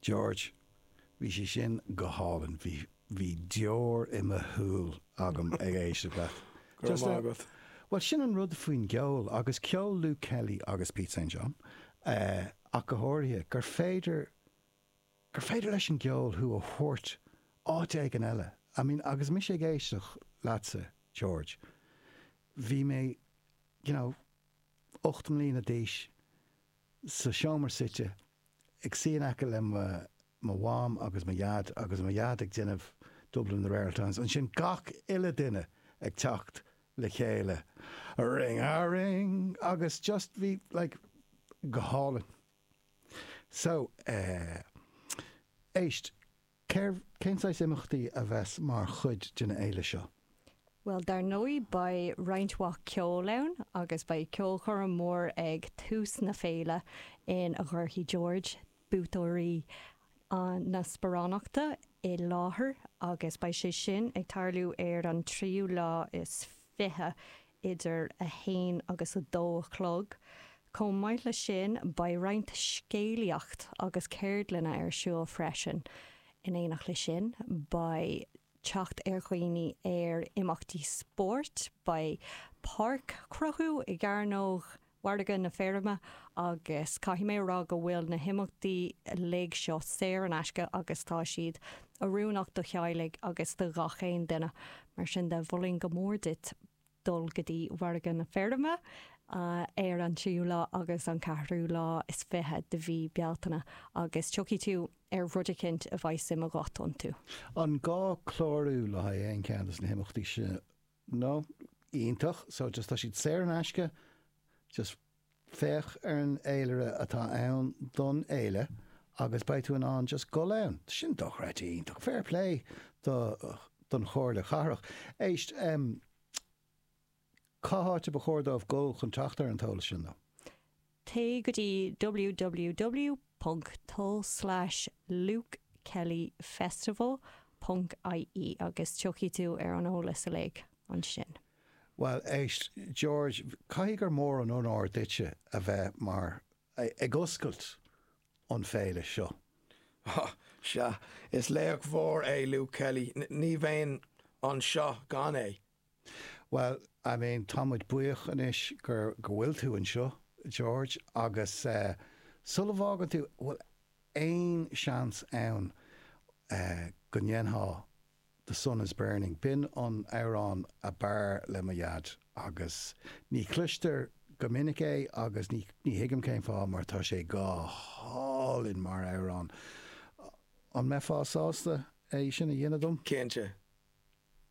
George, Bhí sé sin go hálainn, bhí, bhí deor i mo shúil agam ag éisteacht leat. Go raibh maith agat. Bhuel sin an rud faoin gceol agus ceol Luke Kelly agus Pete St John ach go háirithe, gur féidir, gur féidir leis an gceol thú a thabhairt áit éigin eile. I mean agus mise ag éisteacht leatsa George, bhí mé you know, ocht mbliana d'aois, sa seomra suite, ag suí in aice le mo Mham agus mo Dhaid agus mo Dhaid ag déanamh Dublin in the Rare Oul' Times, ansin gach uile duine ag teacht le chéile ring a ring agus just bhí sé like go hálainn. So eh. éist. Cén saghas imeachtaí a bheas mar chuid den fhéile seo? Bhuel dar ndóigh beidh roinnt mhaith ceol ann agus beidh ceolchoirm mhór ag tús na féile ina gcuirfidh George, buaiteoirí na sparánachta i láthair agus beidh sé sin ag tarlú ar an tríú lá is fiche idir 1 agus 2 a chlog. Chomh maith le sin, beidh roinnt scéalaíocht agus ceardlanna ar siúl freisin. In éineacht le sin, beidh teacht ar dhaoine ar imeachtaí spóirt, beidh páirc á chruthú i gCearnóg Mhargadh na Feirme agus caithfidh mé a rá go bhfuil na himeachtaí uilig seo saor in aisce agus tá siad oiriúnach do theaghlaigh agus do ghach aon duine. Mar sin de, mholfainn go mór duit dul go dtí Mhargadh na Feirme ar an tríú lá agus an ceathrú lá is fiche de mhí Bealtaine agus tiocfaidh tú ar rud eicint a mbeidh suim agat iontu. An gá clárú le haghaidh aon cheann de na himeachtaí seo? no, iontach, so just tá siad saor in aisce, just féach ar an eolaire atá ann don fhéile agus beidh tú in ann just dhul ann. Tá sin dochreidte iontach, fair play do, don Chomhairle Chathrach. Éist, em, cá háit ar ba chóir dóibh dhul chun teacht ar an t-eolas sin, though? Téigh go dtí www.lukekellyfestival.ie agus tiocfaidh tú ar an eolas uilig ansin. Bhuel, éist, George, caithfidh gur mór an onóir duitse a bheith mar, ag oscailt an fhéile seo. Ó, sea, is laoch mhór é Luke Kelly, ní bheinn anseo gan é. Bhuel, I mean, tá muid buíoch anois gur, go bhfuil tú anseo, George, agus eh, sula bhfágann tú, bhfuil aon seans ann eh, go ndéanfá The Sun Is Burning, b'in an t-amhrán ab fhearr le mo dhaid agus ní chloistear go minic é agus ní, ní thuigim cén fáth mar tá sé go hálainn mar amhrán, an mbeifeá sásta é sin a dhéanamh dom? Cinnte.